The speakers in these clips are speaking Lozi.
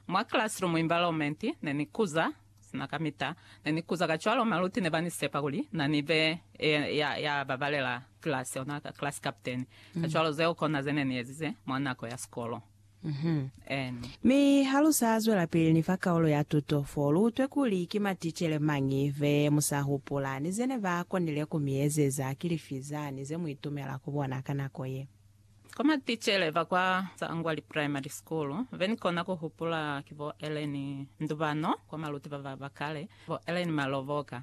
Mwa classroom environment ne ni kuza, sina kamita ne ni kuza kacwalo maluti ne ba ni sepa kuli na ni be e, ya, ya babalela class, ona ka class captain. Kacwalo zeo kona ze ne ni ezize mwa nako ya sikolo. Anne. Mi ha lu sa zwelapili ni fa kaulo ya tuto, fo lu utwe kuli ki maticele mañi be mu sa hupula, ni ze ne ba konile ku mi ezeza, ki lifi zani ze mu itumela ku bona ka nako ye? Kwa maticele ba kwa Tsangwali Primary School, be ni kona ku hupula ki bo Ellen Ndubano kwa maluti ba ba ba kale, bo Ellen Maloboka.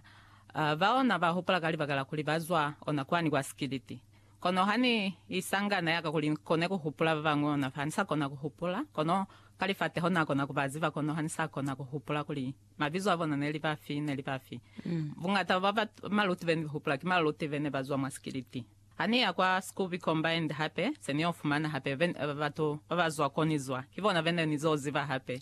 Bao na ba hupula ka libaka la kuli ba zwa ona kwani kwa Sikiliti. Kono ha ni isangana ya ka kuli ni kone ku hupula ba bañwi ona fa, ha ni sa kona ku hupula. Kono ka lifateho na kona ku ba ziba, kono ha ni sa kona ku hupula kuli mabizo a bona ne li bafi, ne li bafi. Buñata bwa maluti be ni hupula ki maluti be ne ba zwa mwa Sikiliti. Ha ni ya kwa Scooby Combined hape, se ni yo fumana hape batu ba ba zwa ko ni zwa. Ki bona bene ni zo ziba hape.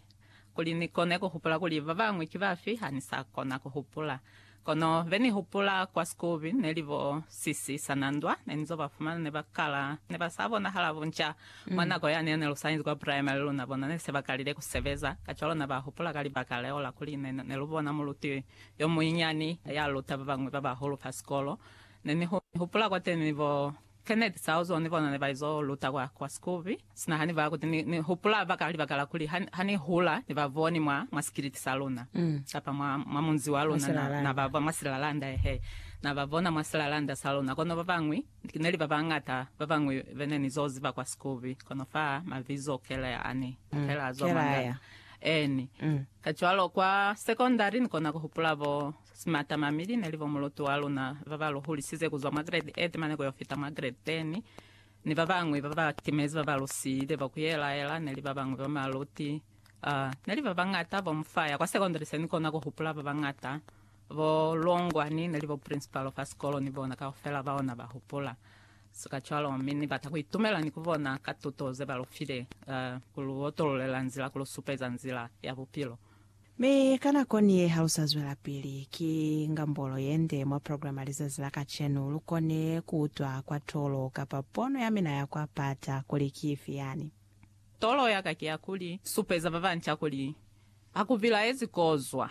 Kuli ni kone ku hupula kuli ba bañwi ki bafi, ha ni sa kona ku hupula. Kono be ni hupula kwa Scooby ne li bo Sisi Sanandwa. Ne ni zo ba fumana ne ba kala, ne ba sa bonahala bunca. Mwa nako yani ya ne lu sa inzi kwa primary, luna bona ne se ba kalile ku sebeza. Kacwalo na ba hupula ka libaka leo la kuli ne lu bona muluti yo munyinyani ya luta ba bañwi ba bahulu fa sikolo. Ne ni hupula kwateni bo Kenneth Sauzo ni bona ne ba izo luta kwa, kwa Scooby. Sina ha ni ba kuti ni, ni hupula baka, libaka la kuli ha, ha ni hula ni ba boni mwa, mwa sikiliti sa luna, kapa mwa, mwa munzi wa luna, na, na ba, ba mwa silalanda, ehe, na ba bona mwa silalanda sa luna. Kono babañwi, neli babañata babañwi bene ni zo ziba kwa Scooby, kono fa mabizo kele ani, kele a zwa mwa ngana. Eeni. Kacwalo kwa sekondari ni kona ku hupula bo. Simatamami, line li bo muluti wa luna ba ba lu hulisize ku zwa mwa grade 8 mane ku yo fita mwa grade 10, ni ba bañwi ba ba timezi ba ba lu siile bo ku yelaela, ne li ba bañwi ba maluti, uh, ne li ba bañata bo mu faya kwa secondary. Se ni kona ku hupula ba bañata, bo longwa, ni ne li bo principal fa sikolo ni bona kaufela bao na ba hupula. So kacwalo, mi ni bata ku itumela ni ku bona ka tuto ze ba lu file, uh, ku lu otolulela nzila, ku lu supeza nzila ya bupilo. Mi ka nako ni ye halusa zwelapili, ki ngambolo yende mwa program ya lizazi la kacenu. Lu kone ku utwa kwa tolo kapa pono ya mina ya kwa pata kuli ki ifi yani. Tolo ya ka ki ya kuli, supeza ba banca kuli ha ku bilaezi kozwa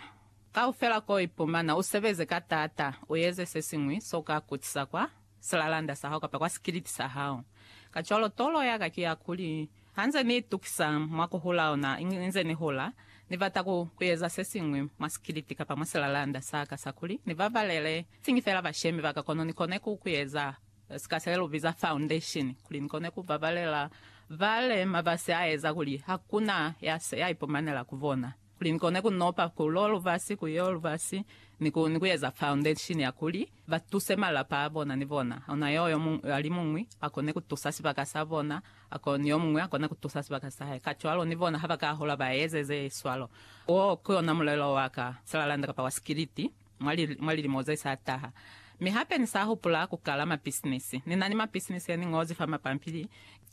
kaufela ko ipumana, u sebeze ka taata, u eze se siñwi so ka kutisa kwa. silalanda sa hao kapa kwa sikiliti sa hao. Kacwalo, tolo ya ka ki ya kuli, ha nze ni itukisa mwa ku hula ona inze ni hula, ni bata ku, ku eza se siñwi mwa sikiliti kapa mwa silalanda sa ka sa kuli ni babalele siñi fela bashemi ba ka kono ni kone ku, ku eza sika se lu biza foundation, kuli ni kone ku babalela bale mabasi a eza kuli hakuna ya se ya ipumanela ku bona. kuli ni kone ku nopa ku lo lubasi ku yo lubasi ni ku ni ku eza foundation ya kuli ba tuse malapa a bona ni bona ona yo yo muñwi a li muñwi a kone ku tusa sibaka sa bona a ko ni yo muñwi a kone ku tusa sibaka sa hae kacwalo ni bona ha ba ka hola ba eze ze swalo. Wo ku yona mulelo wa ka salalanda kapa wa sikiliti. mwa lilimo ze sa taha. Mi hape ni sa hupula ku kala mapisinisi. Ni na ni mapisinisi ya ni ñozi fa mapampili,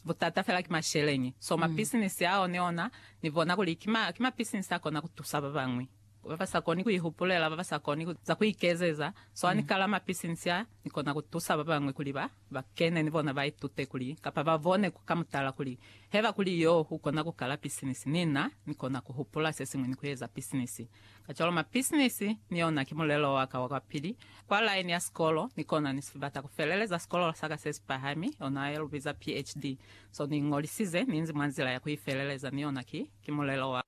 butata fela ki masheleñi. So mapisinisi ao ni ona ni bona kuli ki ma, ki mapisinisi a kona ku tusa ba bañwi. Ba ba sa koni ku ihupulela, ba ba sa koni za ku ikezeza. So ha ni kala mapisinisi a, ni kona ku tusa ba bañwi kuli ba. Ba kene ni bona ba itute kuli, kapa ba bone ku ka mutala kuli, heba kuli yo u kona ku kala pisinisi, ni na ni kona ku hupula se siñwi ni ku eza pisinisi. Kacwalo mapisinisi ni ona ki mulelo wa ka wa kwa pili, kwa laini ya sikolo, ni kona ni si bata ku feleleza sikolo sa ka se si pahami, ona ye lu biza PHD. So ni iñolisize, ni inzi mwa nzila ya ku i feleleza, ni ona ki, ki mulelo wa.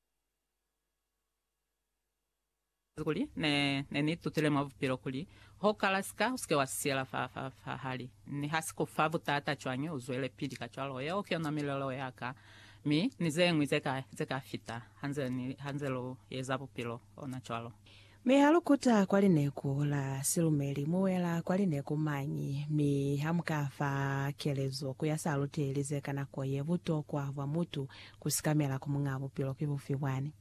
Kuli ne, ne ni tutile mwa bupilo kuli, ho kala sika, usike wa siyela fa, fa, fa hali. Ni ha si ku fa butata cwañi, u zwelepili kacwalo. Yeo ki yona milelo ya ka. Mi, ni zeñwi ze ka, ze ka fita, ha nze ni, ha nze lu eza bupilo, ona cwalo. Mi ha lu kuta kwa lineku la silumeli, mu wela kwa lineku mañi, mi ha mu ka fa kelezo ku ya sa luteli ze ka nako ye, butokwa bwa mutu ku sikamela ku Muñaa Bupilo ki bufi bwani?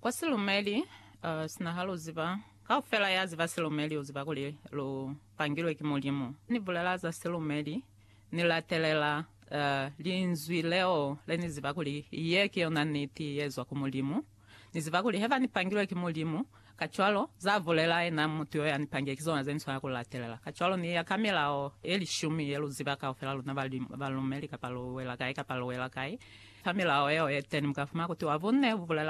Kwa silumeli, uh, sina ha lu ziba, kaufela ya ziba silumeli u ziba kuli lu pangilwe ki Mulimu. Ni bulela za silumeli, ni latelela, uh, Linzwi leo le ni ziba kuli ye ki yona niti ye zwa ku Mulimu. Ni ziba kuli heba ni pangilwe ki Mulimu, kacwalo, za bulela yena mutu yo ya ni pangile ki zona ze ni swanela ku latelela. Kacwalo, ni ya ka milao ye lishumi ye lu ziba kaufela luna ba, balumeli, kapa lu wela kai kapa lu wela kai, fa milao yeo ye teni mu ka fumana kuti wa bune bu bulela